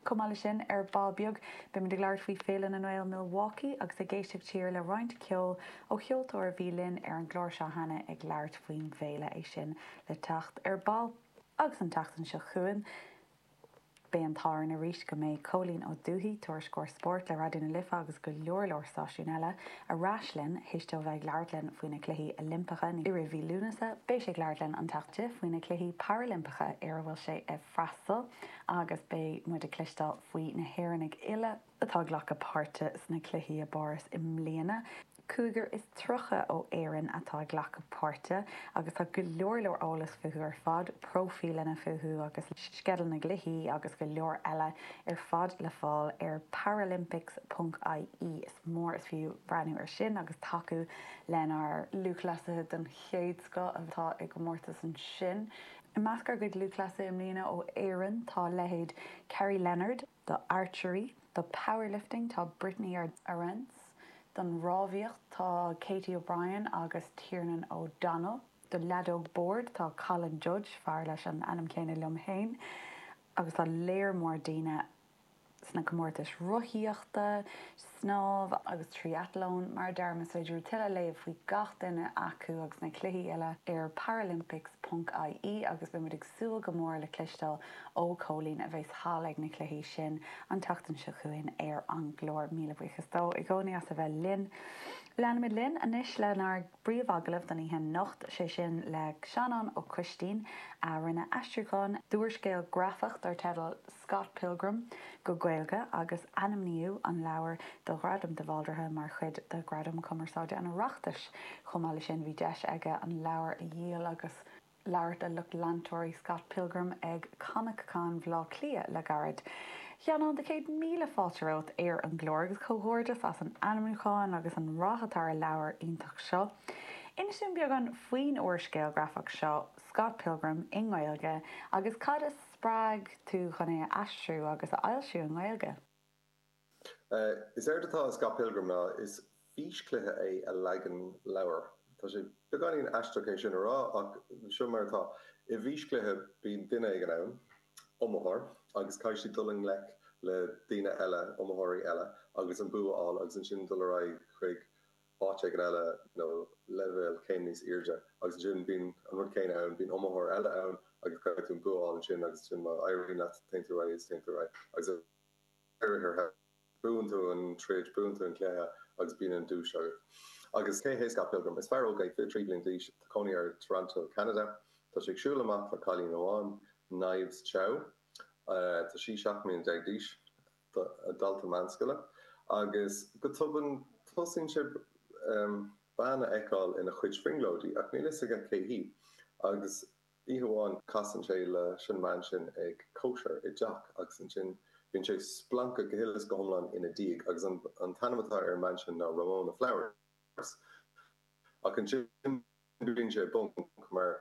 Chomh maith leis sin, ar ball beag, beimid ag labhairt faoi Féile na nGael Milwaukee agus ag éisteacht siar le roinnt ceoil ó cheoltóir a bhí linn ar an gclár seo cheana ag labhairt faoin bhféile. É sin le teacht ar ball. Agus an tseachtain seo chugainn, beidh an t-ádh orainn arís go mbeidh Cóilín Ó Dúthaigh, Tuairisceoir Spóirt le Raidió na Life agus go leor leor stáisiúin eile, ar ais linn. Théis dó bheith ag labhairt linn faoi na Cluichí Oilimpeacha i rith mhí Lúnasa, beidh sé ag labhairt linn an tseachtain seo faoi na Cluichí Parailimpeacha ar a bhfuil sé i freastal agus beidh muid ag cloisteáil faoi na hÉireannaigh uile atá ag glacadh páirte sna cluichí i bPáras i mbliana. Cúigear is tríocha ó Éirinn atá ag glacadh páirte agus tá go leor leor eolas fúthu ar fad, próifíleanna fúthu agus sceideal na gcluichí agus go leor eile ar fad le fáil ar paralympics.ie. Is mór is fiú breathnú ar sin agus tacú lenár lúthchleasaithe den chéad scoth atá i gcomórtas ansin. I measc ár gcuid lúthchleasaithe i mbliana ó Éirinn tá leithéid Kerry Leonard, do Archery, do Powerlifting tá Brittany Arendse, don rámhaíocht tá Katie O'Brien agus Tiernan O'Donnell, do leadóg boird tá Colin Judge, fear leis an ainm céanna liom féin, agus tá léar mór daoine sna comórtais rothaíochta, snámh agus tríathlon, mar a deirim, is féidir tuilleadh a léamh faoi gach duine acu agus na cluichí uile ar paralympics ponc IE agus beimid ag súil go mór le cloisteáil ó Chóilín a bheas thall ag na cluichí sin an tseachtain seo chugainn ar an gclár. Míle buíochas dó i gcónaí as a bheith linn. Leanfaimid linn anois lenár bpríomh-agallamh don oíche anocht, sé sin le Seanán Ó Coistín a rinne aistriúchán d'úrscéal grafach dar teideal Scott Pilgrim go Gaeilge agus ainmníodh an leabhar do Ghradam de Bhaldraithe mar chuid de Ghradaim Cumarsáide an Oireachtais. Chomh maith leis sin, bhí deis aige an leabhar a dhíol agus labhairt le lucht leantóirí Scott Pilgrim ag Comic-Con Bhaile Átha Cliath le gairid. A Sheanáin, céad míle fáilte romhat ar an gclár, agus comhghairdeas as an ainmniúchán agus an rath atá ar an leabhar iontach seo. Inis dúinn beagán faoin úrscéal grafach seo, Scott Pilgrim, i nGaeilge, agus cad a. Spreag tú chun é a aistriú agus a fhoilsiú i nGaeilge. Is éard atá i Scott Pilgrim ná is físchluiche é i leagan leabhar. Tá sé beagáinín aisteach é sin a rá, ach seo mar atá. I bhfíschluiche, bíonn duine éigin ann, iomaitheoir, agus caithfidh sé dul i ngleic le daoine eile, iomaitheoirí eile, agus an bua a fháil, agus ansin dul ar aghaidh chuig áit éigin eile nó leibhéal céim níos airde agus ansin bíonn an rud céanna ann, bíonn iomaitheoir eile ann agus caithfidh tú an bua a fháil ansin agus ansin má éiríonn leat, téann tú ar aghaidh is téann tú ar aghaidh agus ar aghaidh ar aghaidh. Buann tú an troid, buann tú an cluiche agus bíonn an duais agat. Agus cé hé Scott Pilgrim? Is fear óg é, 23 bliain d'aois, tá cónaí air i Toronto, Ceanada. Tá sé ag siúl amach le cailín amháin, Knives Chau. Tá sí 17 mbliana d'aois. dalta meánscoile, agus go tobann tosaíonn sé bean a fheiceáil ina chuid brionglóidí, ach níl fhios aige cé hí, agus oíche amháin casann sé leis an mbean sin ag cóisir i dteach, agus ansin bíonn sé splanctha go huile is go hiomlán ina diaidh, agus an t-ainm atá ar an mbean sin ná Ramona Flowers, ach ansin bíonn sé i bponc, mar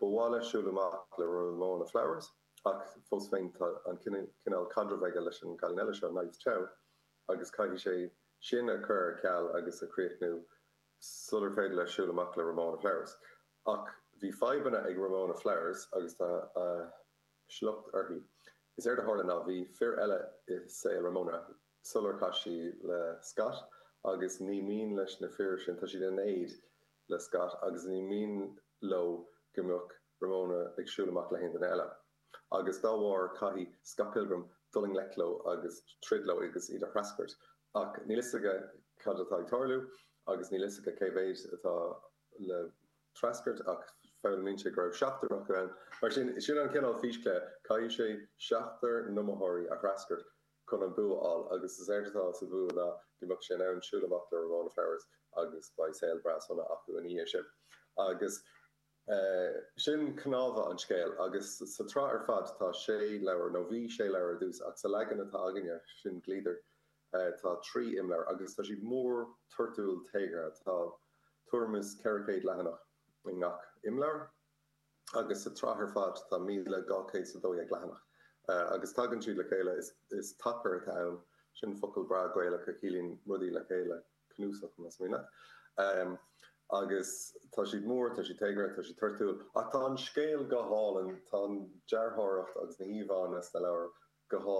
ba mhaith leis siúl amach le Ramona Flowers. Ach fós féin, tá an cineál caidrimh aige leis an gcailín eile seo, Knives Chau, agus caithfidh sé sin a chur ar ceal agus a chríochnú sular féidir leis siúl amach le Ramona Flowers. Ach bhí fadhbanna ag Ramona Flowers agus tá a shliocht uirthi. Is éard a tharla ná bhí fir eile i saol Ramona sular chas sí le Scott agus ní mian leis na fir sin, tá siad in éad le Scott agus ní mian leo go mbeadh, Ramona ag siúl amach le haon duine eile. Agus dá bharr, caithfidh Scott Pilgrim dul i ngleic leo agus troid leo agus iad a threascairt. Ach níl fhios aige cad atá ag tarlú agus níl fhios aige cé mhéid atá le threascairt ach foghlaimíonn sé go raibh seachtar acu ann. Mar sin, sin an cineál físchluiche, caithfidh sé seachtar n-iomaitheoirí a threascairt chun an bua a fháil agus is éard atá sa bhua ná go mbeadh sé in ann siúl amach le Ramona Flowers agus beidh saol breá sona acu ina dhiaidh sin. Agus. Sin cnámha an scéil, agus sa tsraith ar fad tá sé leabhar, nó bhí sé leabhar ar dtús, ach sa leagan atá againne, sin Gliadar, tá trí imleabhar, agus tá siad mór, toirtiúil, téagartha. Tá tuairim is 400 leathanach i ngach imleabhar, agus sa tsraith ar fad tá 1,212 leathanach, agus tagann siad le chéile, is tacar atá ann, sin focal breá Gaelach a chiallaíonn rudaí le chéile. cnuasach na smaointe agus tá siad mór, tá siad téagartha, tá siad toirtiúil ach tá an scéal go hálainn, tá an dearthóireacht agus na híomhánna sna leabhair go hálainn.